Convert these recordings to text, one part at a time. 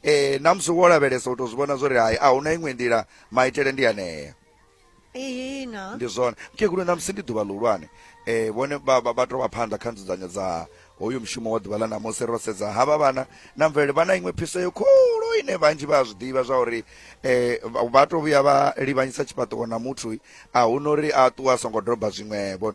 Ee, na musi wo lavhelesa u tou zwi vhona zwo ri hai a huna iṅwe nḓila maitele ndi anea ihina ndi zwone mukegulu na musi ndi ḓuvha ḽihulwane um vhone vha vha- vha tou vha phanḓa kha nzudzanyo dza hoyu mushumo wa ḓuvha ḽa ṋamusi ro sedza havha vhana na mvelele vha na iṅwe phiso yo khulu ine vhanzhi vha a zwi ḓivha zwa uri um vha- vha tou vhuya vha livhanyisa tshifhaṱuwo na muthu a hu na uri a ṱuwe a songo doba zwiṅwevho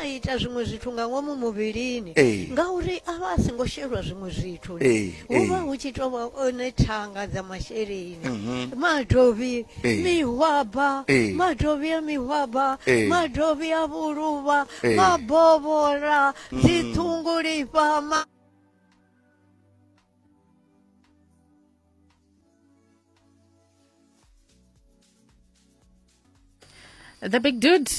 a ita zwiṅwe zwithu nga ngomu muvhilini Ee. ngauri a vha a songo shelwa zwiṅwe zwithu Ee, hu vha ee. hu tshi tovha one thanga dza masheleni Mhm. madovhi Ee. mihwaba Ee. madovhi a mihwaba Ee. madovhi a vhuluvha Ee. mabovhola dziṱhungulifha ma the big dude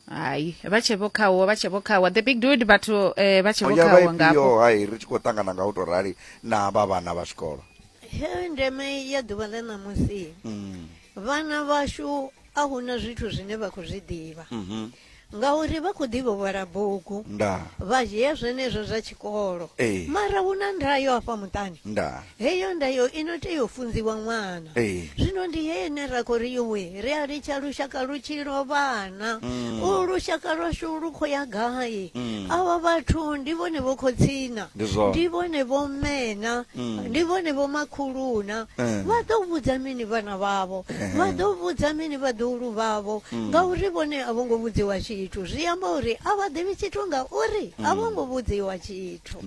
hayi vha tshe vho khawo vha tshe vho khawa the big dude vhathu eh, vha tshe vho ya khawo ngafho vhaipio hai ri tshi khou ṱangana nga u tou rali na vha vhana vha zwikolo He, ndeme ya ḓuvha ḽa ṋamusi Mm, vhana vhashu a huna zwithu zwine vha khou zwi ḓivha mhm. Ngauri vha khou ḓi vhovhola bugu. Ndaa. Vha dzhia zwenezwo zwa tshikolo. Ee. Mara hu na ndayo hafha muṱani. Ndaa. Heyo ndayo i no tea u funziwa ṅwana. Ee. Zwino ndi heyo ine ra khou ri yuwi ri a litsha lushaka lu tshi lovhana. Mm. U lushaka lwashu lu khou ya gai? Mm. Avha vhathu ndi vhone vho khotsina. Ndi zwone. Ndi vhone vho mmena. Mm. Ndi vhone vho makhuluna. Eh. Vha ḓo vhudza mini vhana vhavho? vha ḓo vhudza mini vhaḓuhulu vhavho mm. ngauri vhone a vho ngo vhudziwa tshithu zwi amba uri a vha ḓivhi tshithu ngauri a vho mm. ngo vhudziwa tshithu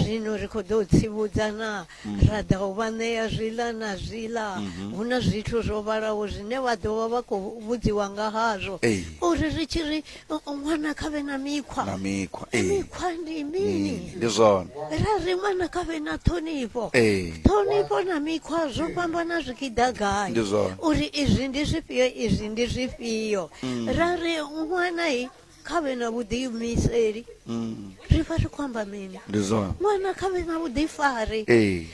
zwino ri khou ḓo tsivhudza na mm. ra ḓa u vha ṋea zwiḽa na zwiḽa mm-hmm. hu na zwithu zwo vhalaho zwine vha ḓo vha vha khou vhudziwa nga hazwo uri ri tshi ri No, o ṅwana kha vhe na mikhwa na mikhwa ee mikhwa ndi mini Mm, ndi zwone ra ri ṅwana kha vhe na ṱhonifho ee ṱhonifho na mikhwa zwo fhambana zwi tshi ḓa gai Ndi zwone. uri izwi ndi zwifhio izwi ndi zwifhio Mm. ra ri ṅwana i kha vhe na vhuḓiimiseli Mm, ri vha ri khou amba mini ndi zwone ṅwana kha vhe na vhuḓifari ee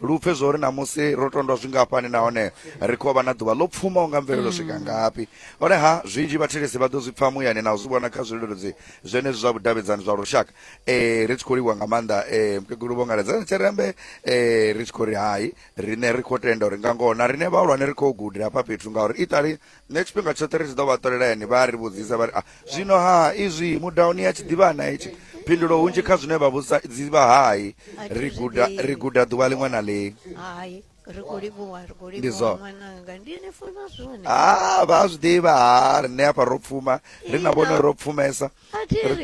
Lu pfe zwauri ṋamusi ro tondwa zwingafhani nahone ri khou vha na ḓuvha ḽo pfumaho nga mvelelo swika ngafhi. Honeha, zwinzhi vhathetshelesi vha ḓo zwi pfa muyani na u zwi vhona kha zwileludzi zwenezwi zwa vhudavhidzani zwa lushaka. Ee, ri tshi khou livhuwa nga maanḓa ee, Mukegulu Vho Ngaledzani Tshirembe. Ee, ri tshi khou ri hai, riṋe ri khou tenda uri nga ngoho na riṋe vhahulwane ri khou guda hafha fhethu ngauri iṱali nṋe tshifhinga tshoṱhe ri tshi ḓo vha ṱolela yani vha ri vhudzisa vha ri a zwino ha izwi mudauni ya tshiḓivhana itshi phindulo hunzhi kha zwine vha vhudzisa dzivha hai ri guda ri guda ḓuvha ḽiṅwe na ḽiṅwe hai ri khou livhuwa ri khou Ndi livhuwa zwo. ṅwananga ndi ni funa zwone ha vha a zwi ḓivha ha riṋe hafha ro pfuma ri na vhone ro pfumesa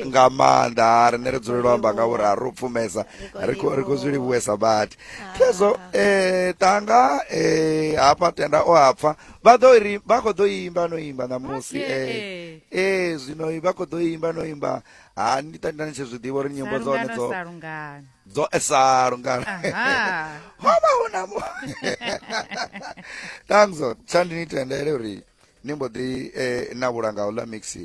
nga maanḓa rine ri dzulelwa amba nga uri a ri u pfumesa ri khou zwi livhuwesa badi pfezo um eh, tanga um eh, hafha tenda o hapfa vha ḓo ri vha khou ḓo imba no imba ṋamusi e eh, zwino vha khou ḓo imba no imba ha ni tenda ni tshi zwi ḓivha uri nyimbo dza hone dzo dzo esa lungana ho vha hu na mu tangzo tsha ndi ni tendele uri ni mbo ḓi na vhulanga u ḽa mixi